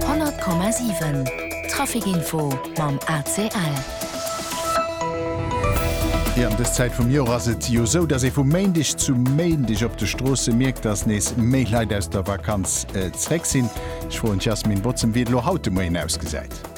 100,7 Trafic Info mam ACL. Jo ëm dës Zäit vum Joer ass et jo esou, datt ee vum Méindeg zum Méindeg op de Stroosse mierkt, datt nees méi Leit aus der Vakanz zréck sinn. Ech froen d'Yasmin Botzen, wéi et elo haut de Moien ausgesäit.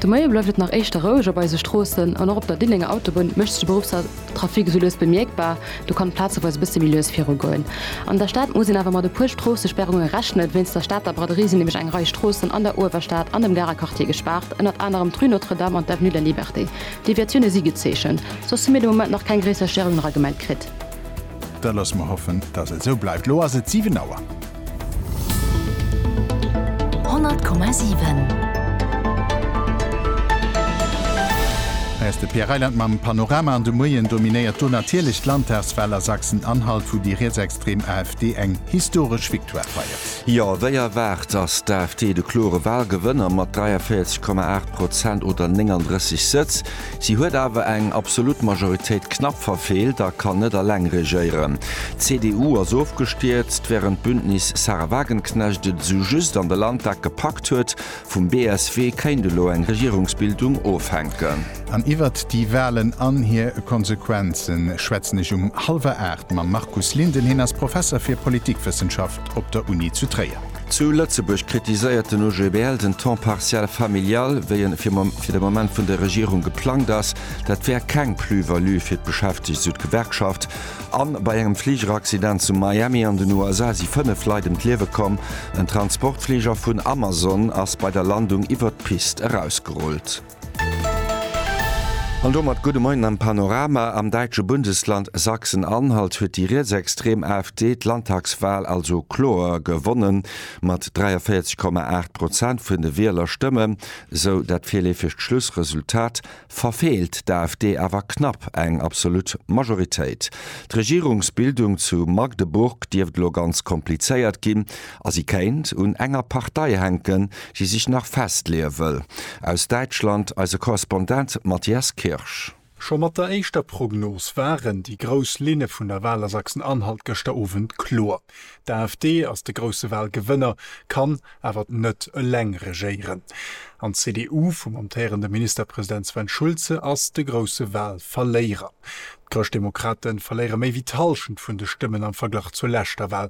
De Moie bleift et nach éischter roueg op eise Stroossen an och op der Diddenger Autobunn mécht sech de Beruffstrafic esou lues bemierkbar. Do kann et plazeweis e bësse méi lues viru goen. An der Stad muss een awer mat e puer Stroossesperrunge rechnen. Wéinst der Stater Braderie sinn nämlech eng Rei Stroossen an der Uewerstad an dem Garer Quartier gespaart, ënnert anerem d'Rue Notre-Dame an d'Avenue de la Liberté. Deviatioune si gezeechent, soss hu mir de Moment nach keng gréisser Stérungen eragemellt kritt. Da loosse mer hoffen, dass et esou bleift. Elo ass et 7 Auer. 100,7 Hei ass de Pierre Reyland mam Panorama an de Moien dominéiert do natierlech d'Landtagswal a Sachsen-Anhalt, wou déi rietsextrem AfD eng historesch Victoire feiert. Jo, wéi erwaart ass d'AfD de klore Walgewënner mat 43,8 Prozent oder 39 Sëtz. Si huet awer eng absolut Majoritéit knapp verfeelt a kann net alleng regéieren. D'CDU ass ofgestierzt, wärend d'Bündnis Sahra Wagenknecht et esou just an de Landtag gepackt huet. Vum BSW kéint elo eng Regierungsbildung ofhänken. An iwwert déi Walen an hir Konsequenze schwätzen ech um hallwer 8 mam Markus Linden. Hien ass Professer fir Politikwëssenschaft op der Uni zu Tréier. Zu Lëtzebuerg kritiséiert den OGBL den Temps partiel familial, wéi en fir de Moment vun der Regierung geplangt ass. Dat wär keng Plus-value fir d'Beschäftegt, sou d'Gewerkschaft. A bei engem Fligeraccident zu Miami an den USA si fënnef Leit ëm d'Liewe komm. En Transportfliger vun Amazon ass bei der Landung iwwert d'Pist erausgerullt. An domat gudde Moien am Panorama. Am däitsche Bundesland Sachsen-Anhalt huet déi rietsextrem AfD d'Landtagswal also kloer gewonnen, mat 43,8 Prozent vun de Wielerstëmmen, sou dat virleefegt Schlussresultat, verfeelt d'AfD awer knapp eng absolut Majoritéit. D'Regierungsbildung zu Magdeburg dierft elo ganz komplizéiert ginn. A si kéint un enger Partei hänken, déi sech nach festleeë wëll. Aus Däitschland eise Korrespondent Matthias Kirsch. Scho mat der éischter Prognos waren déi grouss Linne vun der Wal a Sachsen-Anhalt gëschter Owend kloer. D'AfD ass de grousse Walgewënner, kann awer net eleng regéieren. An d'CDU vum amtéierende Ministerpresident Sven Schulze ass de grousse Walverléierer. D'Chrëschtdemokrate verléiere méi wéi d'Hallschent vun de Stëmmen am Verglach zur leschter Wal,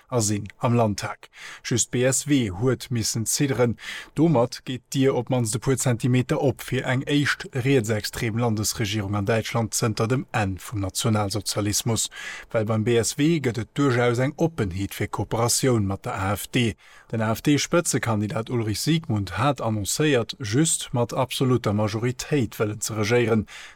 a sinn am Landtag. Just d'BSW huet missen zidderen. Domat geet d'Dier op d'mannst e puer Zentimeter op fir eng éischt rietsextrem Landesregierung an Däitschland zënter dem Enn vum Nationalsozialismus. Well beim BSW gëtt et duerchaus eng Oppenheet fir Kooperatioun mat der AfD. Den AfD-Spëtzekandidat Ulrich Siegmund hat annoncéiert, just mat absolutter Majoritéit wëllen ze regéieren.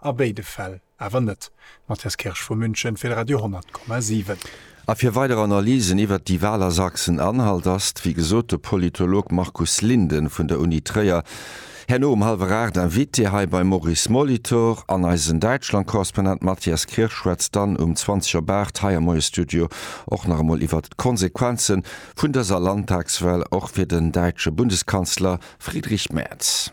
A béide Fäll awer net. Matthias Kirsch vu München fir de Radio 10,7. A fir weider Analysen iwwert déi Wal a Sachsen anhalt ass, wéi gesot, de Politolog Markus Linden vun der Uni Tréier herno um hallwer 8 Invité hei beim Maurice Molitor an eisen Däitschlandkorrespondent Matthias Kirsch schwätzt dann um 20 op 8 hei am Moie Studio och nach emol iwwert d'Konsequenze vun dëser Landtagswal och fir den däitsche Bundeskanzler Friedrich Merz.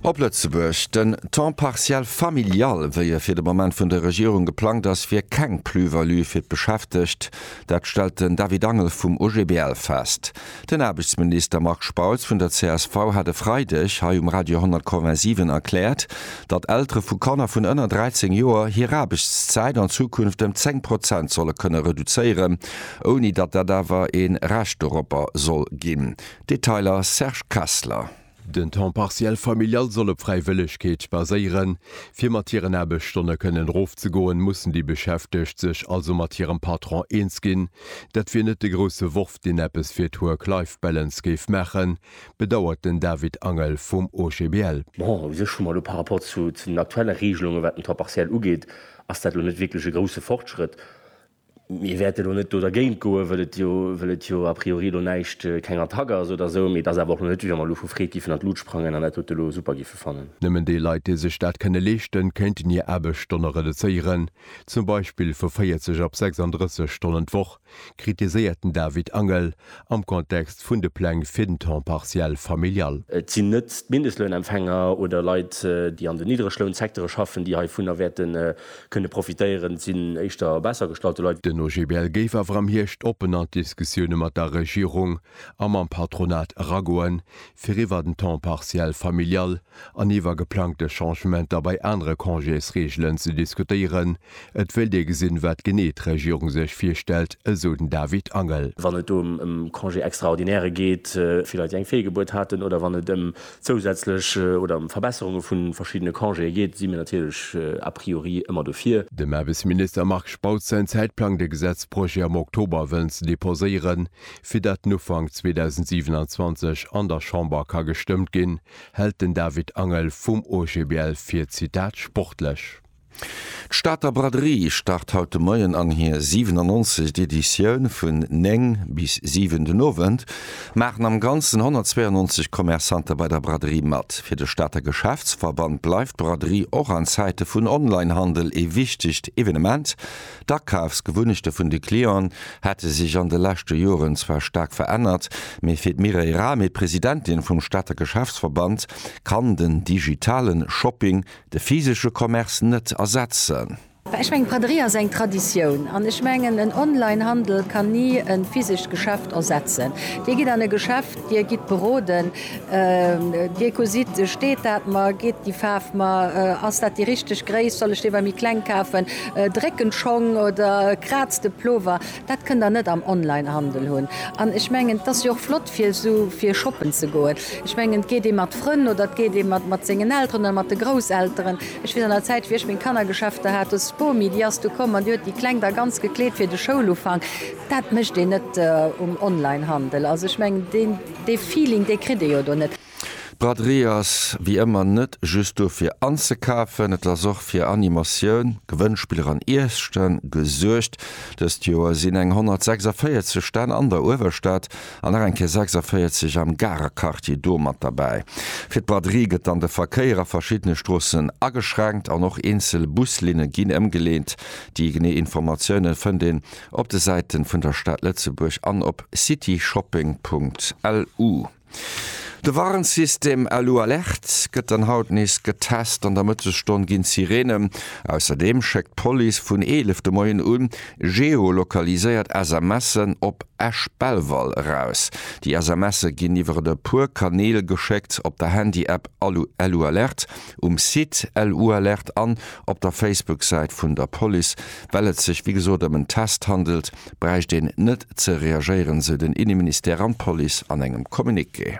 Op Lëtzebuerg, Den Temps partiel familial, wéi e fir de Moment vun der Regierung geplangt ass, wier keng Plus-value fir d'Beschäftegt. Dat stellt den David Angel vum OGBL fest. Den Aarbechtsminister Marc Spautz vun der csv hat e Freideg hei um Radio 1087 erkläert, datt Eltere vu Kanner vun ënner 13 Joer hir Aarbechtszäit an Zukunft ëm 10 Prozent solle kënne reduzéieren. ouni datt dat awer ee Recht doropper soll ginn. Detailer, Serge Kessler. Den Temps partiel familial soll op Fräiwëllegkeet baséieren. Fir mat hiren Aarbechtsstonne kënnen erofzegoen, mussen déi Beschäftegt sech also mat hirem Patron eens ginn. Dat wier net de grousse Worf, deen eppes fir d'Work-Life-Balance géif maachen, bedauert den David Angel vum OGBL. Bon, u sech hu mer elo par rapport zu den aktuelle Regelungen, wat den Temps partiel ugeet, ass dat elo net wierklech e grousse Fortschrëtt. Mir wäerte elo net do dergéint goen, wëll et jo, wëll et jo a priori elo näischt, keng Attack ass oder esou. Mee et ass awer och elo net, wéi wa mer elo vu Freed giffen an d'Lut sprangen an dat dote elo super giffe fannen. Nëmmen déi Leit, déi sech dat kënne leeschten, kéinten hir Aarbechtsstonne reduzéieren, zum Beispill vu 40 op 36 Stonnen d'Woch, kritiséiert den David Angel am Kontext vun de Pläng fir den Temps partiel familial. Et sinn net d'Mindestlounempfänger oder Leit, déi an den Niddreglounsecteure schaffen, déi heivunner wäerte kënne profitéieren, sinn éischter besser gestallte Leit. Den OGBL géif awer am Hierscht oppen an d'Diskussioune mat der Regierung a mam Patronat eragoen, fir iwwer den Temps partiel familial an iwwer geplangte Changementer bei anere Congésreegelen ze diskutéieren. Et wéilt ee gesinn, wat genee d'Regierung sech virstellt, esou den David Angel. Wann et do ëm Congé extraordinaire geet, fir Leit, déi eng Feelgebuert haten, oder wann et ëm zousätzlech oder ëm Verbesserunge vu verschiddene Congéë geet, si mir natierlech a priori ëmmer dofir. Dem Aarbechtsminister Marc Spautz säin Zäitplang, de Gesetzprojet am Oktober wëllen ze deposéieren, fir datt en Ufank 2027 an der Chamber ka gestëmmt ginn, hält den David Angel vum OGBL fir, Zitat, sportlech. D'Stater Braderie start haut de Moien an hir 97. Editioun. Vun 9 bis 7 den Owend maachen am Ganzen 192 Commerçantë bei der Braderie mat. Fir de Stater Geschäftsverband bleift d'Braderie och an Zäite vun Online-Handel ee wichtegt Evenement. D'Akafsgewunnechte vun de Clienten hätte sech an de leschte Joren zwar staark verännert, mee fir d'Mireille Rahmé, Presidentin vum Stater Geschäftsverband, kann den digitale Shopping De physesche Commerce net ersetzen. Ech mengen, d'Braderie ass eng Traditioun. An ech mengen, en Online-Handel kann ni e physescht Geschäft ersetzen. Dir gitt an e Geschäft, Dir gitt beroden, Dir gesitt, steet dat mer, geet déi Faarf mer, ass dat déi richteg Gréisst, soll ech dee bei méi kleng kafen, drécken d'Schong oder kraazt de Plover. Dat kënnt Der net am Online-Handel hunn. An ech mengen, et ass jo och flott, fir esou fir shoppen ze goen, ech mengen et geet ee mat Frënn oder et geet ee mat mat sengen Elteren oder mat de Grousselteren. Ech weess an der Zäit wéi ech meng Kannergeschäfter hat, huet d'Spomi déi ass du komm an déi huet déi Kleng da ganz gekleet fir de Schoulufank. Dat mécht een net um Onlinehandel, also ech mengen deen dee Feeling dee kritt ee jo do net. D'Braderie ass wéi ëmmer net just do fir anzekafen, et ass och fir Animatioun, Gewënnspiller an Iesse gesuergt. Dëst Joer sinn eng 146 Stänn an der Uewerstad an nach eng Kéier 46 am Garer Quartier do mat derbäi. Fir d'Braderie gëtt dann de Verkéier a verschiddene Stroossen ageschränkt an och eenzel Buslinne ginn ëmgeleent. Déi genee Informatioune fënnt een op de Säite vun der Stad Lëtzebuerg an op cityshopping.lu. De Warnsystem Alu Alert gëtt dann haut nees getest, an der Mëttesstonn ginn d'Sireene ausserdeem schéckt d'Police vun 11 de Moien u geolokaliséiert SMSen op Esch-Belval eraus. Déi SMSe ginn iwwer e puer Kanäl geschéckt, op der Handy-App Alu Alert um Site LU-Alerte an op der Facebook-Säit vun der Police. Well et sech wéi gesot ëm en Test handelt, bräicht een net ze reagéieren, sou den Inneministère an d'Police an engem Communiqué.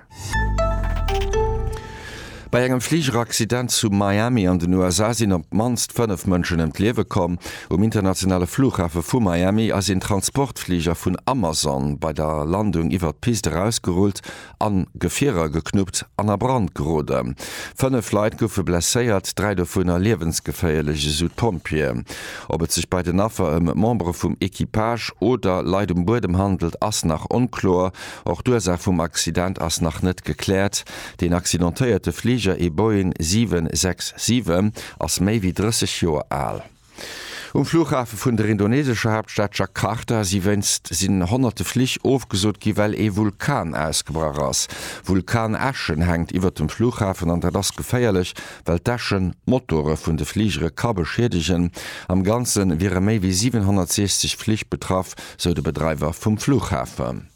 Bei engem Fligeraccident zu Miami an den USA sinn op d'mannst fënnef Mënschen ëm d'Liewe komm. Um internationale Flughafe vu Miami ass een Transportfliger vun Amazon bei der Landung iwwert d'Pist erausgerullt a Gefierer geknuppt an a Brand geroden. Fënnef Leit goufe blesséiert, dräi dovunner liewensgeféierlech, esou d'Pompjeeë. Ob et sech bei den Affer ëm Membere vum Equipage oder Leit um Buedem handelt, ass nach onkloer. Och d'Ursaach vum Accident ass nach net gekläert. Den accidentéierte Fliger, ee Boeing 767, ass méi wéi 30 Joer al. Um Flughafe vun der indonesescher Haaptstad Jakarta si wéinst sinn honnerte Flich ofgesot gi well ee Vulkan ausgebrach ass. Vulkanäschen hänkt iwwert dem Flughafen an dat ass geféierlech well d'Äschen d'Motore vun de Fligere ka beschiedegen. Am Ganze wiere méi wéi 760 Flich betraff, sou de Bedreiwer vum Flughafen.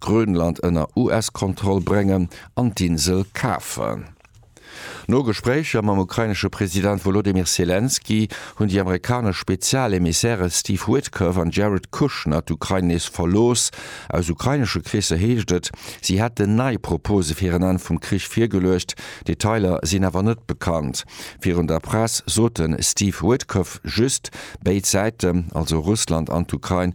Grönland ënner US-Kontroll bréngen an d'Insel kafen. No Gespréicher mam ukrainesche President Wolodymyr Selenskyj hunn déi amerikanesch Spezial-Emissäre Steve Witkoff an Jared Kushner d'Ukrain nees verlooss. Aus ukrainesche Kreesser heescht et, si hätten nei Propose fir en Enn vum Krich virgeluecht. Detailer sinn awer net bekannt. Virun der Press sot de Steve Witkoff just, béid Säiten, also Russland an d'Ukrain,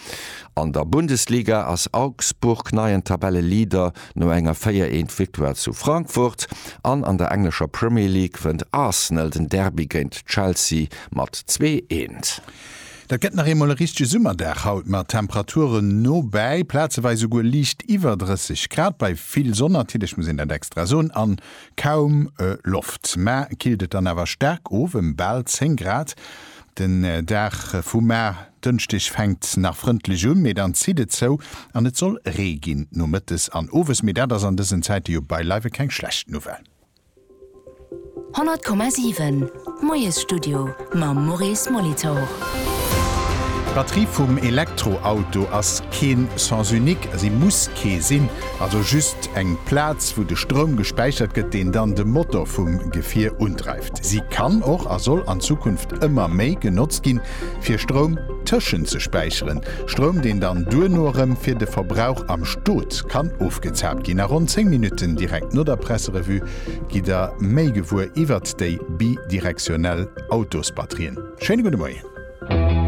An der Bundesliga ass Augsburg neien Tabelleleader no enger 4 Eent Victoire zu Frankfurt an an der englescher Premier League wënnt Arsenal den Derby géint Chelsea mat 2 Eent. Dat gëtt nach eemol e richtege Summerdag haut mat Temperaturen no bäi plazeweis esouguer liicht iwwer 30 Grad, bei vill Sonn natierlech, muss een dat extra soen, an kaum Loft. Mä killt et dann awer staark of em bal 10 Grad. Den Dag vum Mar, Dënschdeg, fänkt nach frëndlech un, mee dann zitt et zou an et soll Ree ginn nomëttes an owes. Mee dat ass an dësen Zäite jo beileiwe keng schlecht Nouvelle. 100,7 Moiesstudio mam Maurice Molitor. D'Batterie vum Elektroauto ass keen Sens unique, si muss kee sinn, also just eng Plaz wou de Stroum gespäichert gëtt, deen dann de Motor vum Gefier undreift. Si kann och a soll an Zukunft ëmmer méi genotzt ginn, fir Stroum tëschentzespäicheren, Stroum, deen dann duerno erëm fir de Verbrauch am Stot kann ofgezaapt ginn. A ronn 10 Minutten direkt no der Presserevue gitt der méi gewuer iwwert déi bidirektionell Autosbatterien. Schéine gudde Moien.